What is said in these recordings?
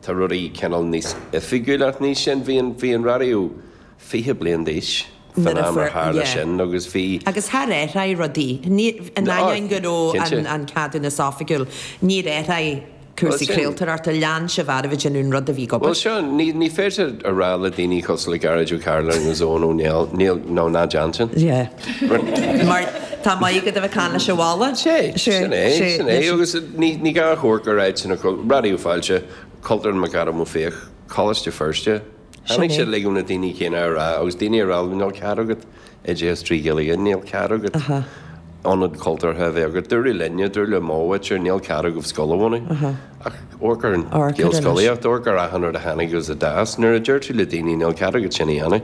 Tá rudaí cineál níos oifigiúla ach ní sin, bhí an, bhí an raidió fiche bliain d'aois fán am ar tharla sin agus bhí. Agus ar athraigh rudaí, ní, in ainneoin go raibh an, an ceadúnas oifigiúil, níor athraigh cúrsaí craoltóireachta, lean sé, mar ba sin an rud a bhí ag obair. Bhuel seo, ní, ní féidir a rá le daoine cosúil le Gearóid Ó Cairealláin agus Eoghan Ó Néill, níl, no, ná déan. Mar tá mé ag bualadh mo cheann leis an bhalla. Sé, sin é, sin é. Agus ní gá a rá gur áit ina cro-, raidió fáilte, Cultúrlann McAdam Ó Fiaich, Coláiste Feirste. Tháinig siad uilig ó na daoine céanna a rá, agus daoine ag rá go bhfuil níl cead agat oideachas trí Ghaeilge, níl cead agat ionad cultúrtha a bheith agat. Dúradh linne, dúradh le m'athair, sure, níl cead agaibh scoil a bhunú. Ach amharc ar an Ghaelscolaíocht, amharc ar achan rud a tháinig agus a d'fhás. Nuair a deir tú le daoine níl cead agat sin a dhéanamh,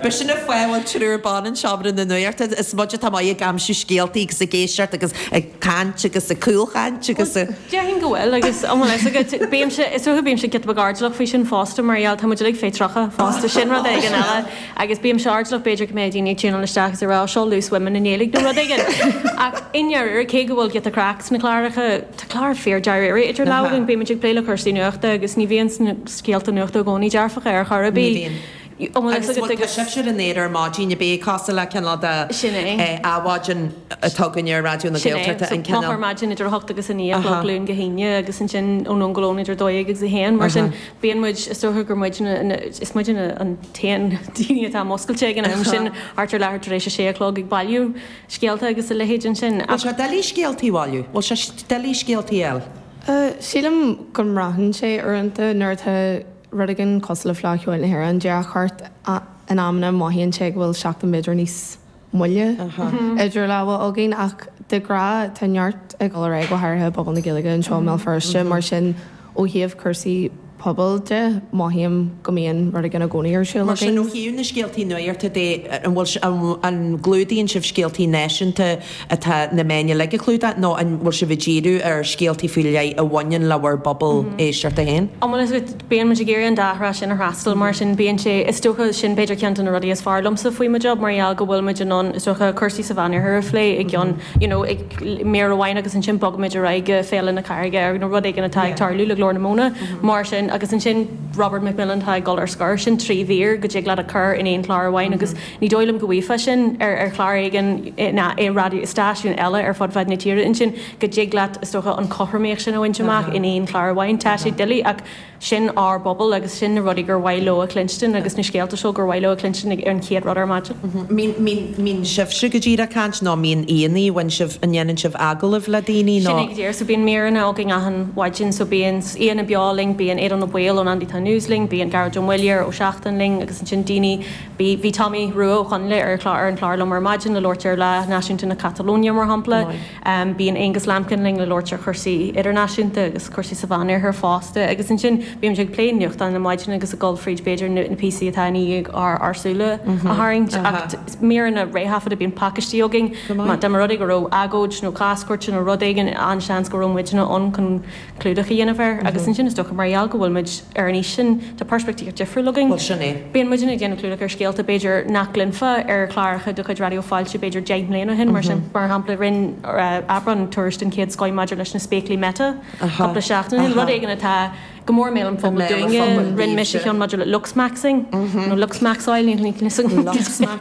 B'fhéidir sin an fáth a bhfuil triúr ban in Seomra na Nuachta, is muid atá maith ag aimsiú scéaltaí agus ag éisteacht agus ag caint agus ag cúlchaint agus. Bhuel, déarfainn go bhfuil agus an mhaith leis agat. Bímse, is dócha bímse giota beag airdeallach faoi sin fosta mar gheall, tá muid uilig faoi 30 fosta, sin rud éigin eile agus bímse airdeallach b'fhéidir go mbeadh daoine ag tiúnáil isteach agus ag rá 'seo loose women' i nGaeilge nó rud éigin ach i ndáiríre, cé go bhfuil giota craic sna cláracha, Tá clár fíor dáiríre idir lámha againn. Bímid ag plé le cúrsaí nuachta agus ní bhíonn na scéalta nuachta i gcónaí dearfacha ar chor ar bith. Ní bhíonn. Agus bhuel, tá sibhse ar an aer ar maidin, ab é, cosúil le cineál de Adhmhaidin atá againn ar Raidió na Gaeltachta, an cineál. Sin é. So, clár maidin idir a hocht agus a naoi a chlog, Luan go hAoine, agus ansin Nuacht am Lóin idir a dó dhéag agus a haon. Mar sin, bíonn muid, is dócha gur muid na, is muide na, an t-aon daoine atá múscailte ag an am sin, thart ar leathuair tar éis a sé a chlog ag bailiú. scéalta agus a leithéid ansin. Bhfuil sé doiligh scéaltaí a bhailiú? Bhfuil sé doiligh scéaltaí a. Sílim go mbraitheann sé uaireanta. Nuair atá rud éigin cosúil le Fleadh Cheoil na hÉireann díreach thart, in amanna mothaíonn sé go bhfuil seachtain b'fhéidir níos moille idir lámha againn. Ach de ghnáth, tá neart ag dul ar aghaidh, go háirithe i bpobal na Gaeilge anseo i mBéal Feirste, mar sin. Ó thaobh cúrsaí pobail de, mothaím go mbíonn rud éigin i gcónaí ar siúl againn. Mar sin, ó thaobh na scéaltaí nuachta de, an bhfuil, an gclúdaíonn sibh scéaltaí náisiúnta atá na meáin uilig ag clúdach nó an bhfuil sibh ag díriú ar scéaltaí faoi leith a bhaineann le bhur bpobal éisteachta féin? Ó bhuel, is é, bíonn muid ag iarraidh an dá thrá sin a fhreastal, mar sin bíonn sé, is dócha, sin b'fhéidir ceann de na rudaí is fearr liomsa faoi mo job mar gheall go bhfuil muid in ann, is dócha, cúrsaí sa Mheánoirthear a phlé i gceann, you know, i. mír amháin agus ansin bogaimid ar aghaidh go Féile na Carraige nó rud éigin atá ag tarlú le Glór na Móna mar sin agus ansin Robert McMillen atá ag dul ar scor. Sin trí mhír go dtig leat a chur in aon chlár amháin agus ní dóigh liom go bhfaighfeá sin ar chlár éigin ná i raidió, i stáisiún eile ar fud fad na tíre. É sin go dtig leat, is dócha, an chothromaíocht sin a bhaint amach in aon chlár amháin. Tá sé doiligh ach. Sin ár bpobal agus sin na rudaí gur mhaith leo a chluinstin agus na scéalta seo gur mhaith leo a chluinstin ar an chéad rud ar maidin. An mbíonn sibhse go díreach ag caint nó an mbíonn aon ní a bhain sibh, an ndéanann sibh agallaimh le daoine nó. Sin é go díreach. So bíonn míreanna againn achan mhaidin. So bíonn aíonna beo linn, bíonn Aodán Ó Baoill ón Andy Town News linn, bíonn Gearóid Ó Muilleoir ó Seachtain linn agus ansin daoine, bhí, bhí Tommy Rua Ó Conghaile ar an chlár liom ar maidin le labhairt ar Lá Náisiúnta na Catalóine mar shampla. Bíonn Aonghus Lambkin linn le labhairt ar chúrsaí idirnáisiúnta agus cúrsaí sa Mheánoirthear fosta agus ansin bímid ag plé nuachtáin na maidine agus ag dul fríd b'fhéidir na píosaí atá i ndiaidh ár súile a tharraingt ach míreanna réthaifeadta, bíonn pacaistí againn, dá mba rud é go raibh agóid nó cás cúirte nó rud éigin an-seans go raibh muidinne ann chun. clúdach a dhéanamh air agus ansin is dócha mar gheall go bhfuil muid ar an aois sin tá peirspictíocht difriúil againn. Bhuel sin é. Bíonn muidinne ag déanamh clúdach ar scéalta b'fhéidir nach gcluinfeá ar chláracha de chuid Raidió Fáilte b'fhéidir deich mbliana ó shin mar sin. Mar shampla rinne Aibreán tuairisc den chéad scoith maidir leis na spéaclaí Meta cúpla seachtain ó shin, rud éigin atá go mór i mbéal an phobail dúinne, rinne mise ceann maidir le looksmaxxing nó looksmaxáil, níl 'fhios agam.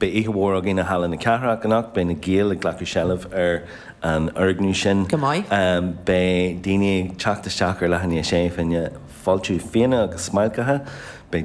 Beidh oíche mhór againn i Halla na Cathrach anocht. Beidh na Gaeil ag glacadh seilbh ar an fhoirgneamh sin. Go maith. Beidh daoine ag teacht isteach ar leath i ndiaidh 6, fá choinne fáiltiú fíona agus smailceacha. Beidh.